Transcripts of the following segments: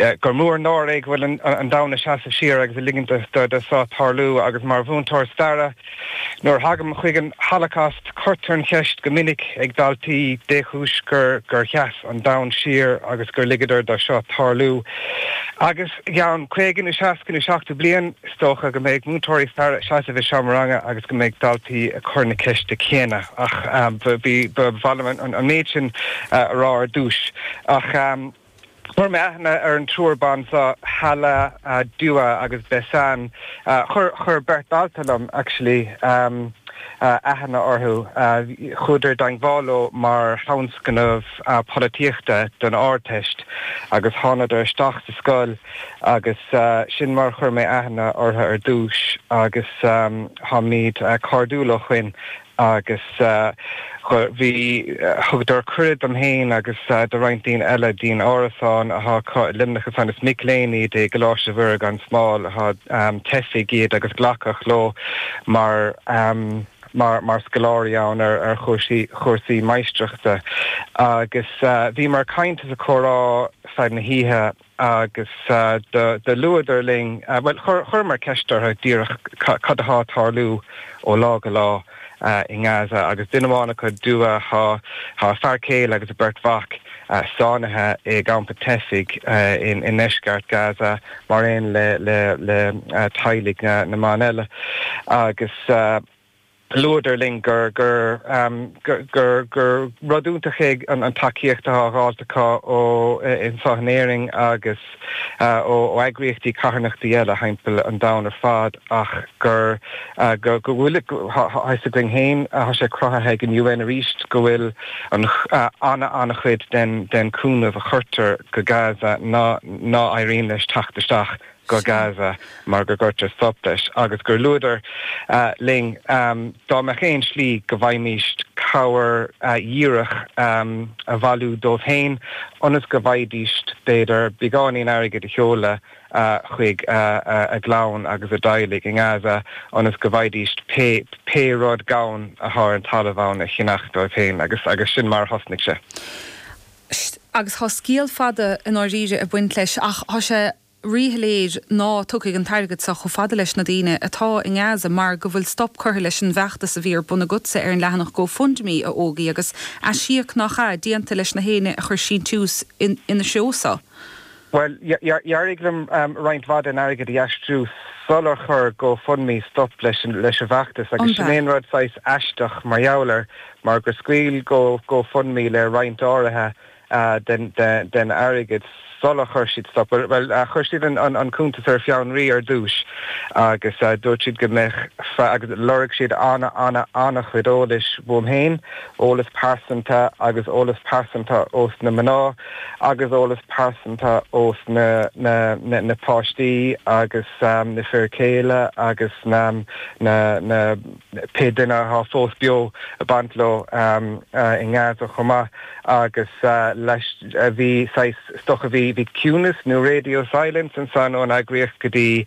Gur mó an náire é go bhfuil an domhan ag seasamh siar agus ag ligint do seo tarlú agus mar mhúinteoir staire nuair a thagaim chuig an Holocaust cuirtear an cheist go minic ag daltaí dé chúis gur sheas an domhan siar agus gur ligeadar do seo tarlú agus i gceann caoga nó seasca nó seachtó bliain is dócha go mbeidh múinteoirí staire ag seasamh i seomra ranga agus go mbeidh daltaí ag cur na ceiste céanna ach ba mhaith liom an méid sin a rá ar dtús ach. Chuir mé aithne ar an triúr ban seo, Hala, Dua agus Besan. Chuir beirt dalta liom, actually, aithne orthu. Chuadar i dteangmháil leo mar thionscnamh polaitíochta don Ardteist agus thánadar isteach sa scoil agus sin mar a chuir mé aithne orthu ar dtús agus táimid cairdiúil ó shoin. agus bhí, thugadar cuireadh dom féin agus do roinnt daoine eile dtí'n árasán athá acu i Luimneach ansan. Is mic léinn iad i gColáiste Mhuire gan Smál athá teifigh iad agus glacadh leo mar, mar, mar scoláirí ann ar, ar chúrsaí, chúrsaí maistreachta. Agus bhíomar ag caint is ag comhrá feadh na hoíche. agus do luadar linn, bhuel, chuireamar ceist orthu díreach cad athá ag tarlú ó lá go lá i nGaza agus duine amháin acu, Dua, thá a fear céile agus a beirt mhac sáinnithe i gcampa teifigh i ndeisceart Gaza mar aon le teaghlaigh na mban eile. Agus. Luadar linn gur rud iontach é an tacaíocht atá á fháilt acu ó Anseo in Éirinn agus ó eagraíochtaí carthanachtaí eile thimpeall an domhain ar fad ach gur fios againn féin athá sé cruthaithe ag an UN arís go bhfuil an-an-chuid den chúnamh a chuirtear go Gaza ná éiríonn leis teacht isteach go Gaza mar go gcuirtear stop leis agus gur luadar linn dá mbeadh aon slí go bhfaighmís cabhair dhíreach a bhailiú dóibh féin ionas go bhfaighidís b'fhéidir beagáinín airgid a sheoladh chuig a gclann agus a dteaghlaigh i nGaza ionas go bhfaighidís pé rud gann athá ar an talamh ann a cheannach dóibh féin agus agus sin mar a thosnaigh sé. Scéal fada i ndáiríre ag baint leis ach tá sé, ríshoiléir ná tiocfaidh an t-airgead seo chomh fada leis na daoine atá i nGaza mar go bhfuil stop curtha leis an bhfeachtas a bhí ar bun agatsa ar an leathanach GoFundMe a Ógie agus aisíoc nach ea déanta leis na héinne a chuir síntiús ina threo sa Bhuel, d'éirigh liom roinnt mhaith den airgead a aistriú sular chuir GoFundMe stop leis an bhfeachtas agus sin é an rud saghas aisteach mar gheall air mar gur scaoil GoFundMe le roinnt áirithe den airgead sula chuir siad stop, bhuel, chuir siad an cuntas ar fionraí ar dtús agus dúirt siad go mbeadh, agus lorg siad an-chuid eolais fúm féin, eolas pearsanta agus eolas pearsanta os na mná agus eolas pearsanta os na páistí agus na fir céile agus na pé duine atá fós beo, a baint leo i nGaza chomh maith agus leis bhí saghas stop a bhí bhí ciúnas nó radio silence ansan ón eagraíocht go dtí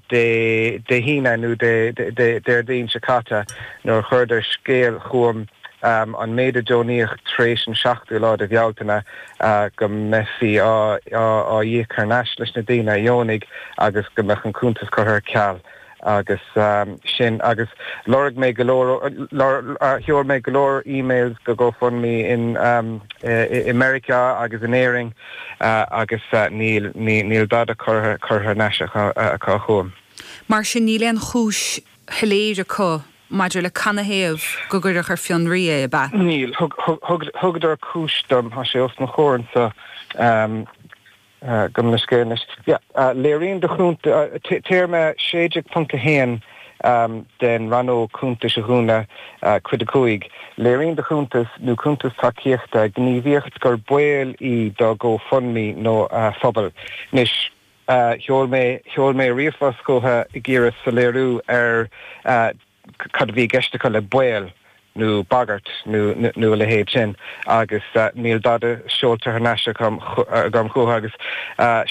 Dé Dé hAoine nó Dé Dé Déardaoin seo caite nuair a chuireadar scéal chugam an méid a deonaíodh tar éis an 7ú lá de Bhealtaine go mbeifí á á íoc thar n-ais leis na daoine a dheonaigh agus go mbeadh an cuntas curtha ar ceal. Agus sin agus lorg mé go leor, sheol mé go leor emails go Gofundme i Meiriceá agus in Éirinn agus níl dada curtha ar n-ais acu chugam. Mar sin níl aon chúis shoiléir acu maidir le canathaobh gur cuireadh ar fionraí é, ab ea? Níl. Thugadar cúis dom, tá sé os mo chomhair anseo. Ah, gabh mo leithscéal anois. Yeah, léiríonn do chuntas, téarma 16.1 den rannóg cuntais a dhúnadh, Cuid 5, léiríonn do chuntas nó cuntas tacaíochta gníomhaíocht gur baol í do GoFundMe nó a phobal. Anois, sheol mé, sheol mé ríomhphost chucu ag iarraidh soiléiriú ar. cad a bhí i gceist acu le baol nó bagairt nó a leithéid sin agus níl dada seolta thar n-ais agam chucu agus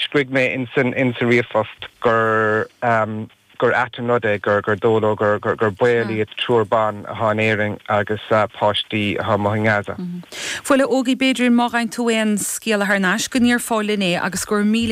scrígh mé insa ríomhphost gur ait an rud é gur dóigh leo gur baol iad triúr ban atá in Éirinn agus páistí atá amuigh i nGaza. Bhuel, a Ógie, b'fhéidir má fhaigheann tú aon scéala thar n-ais go roinnfeá linn é agus go raibh míle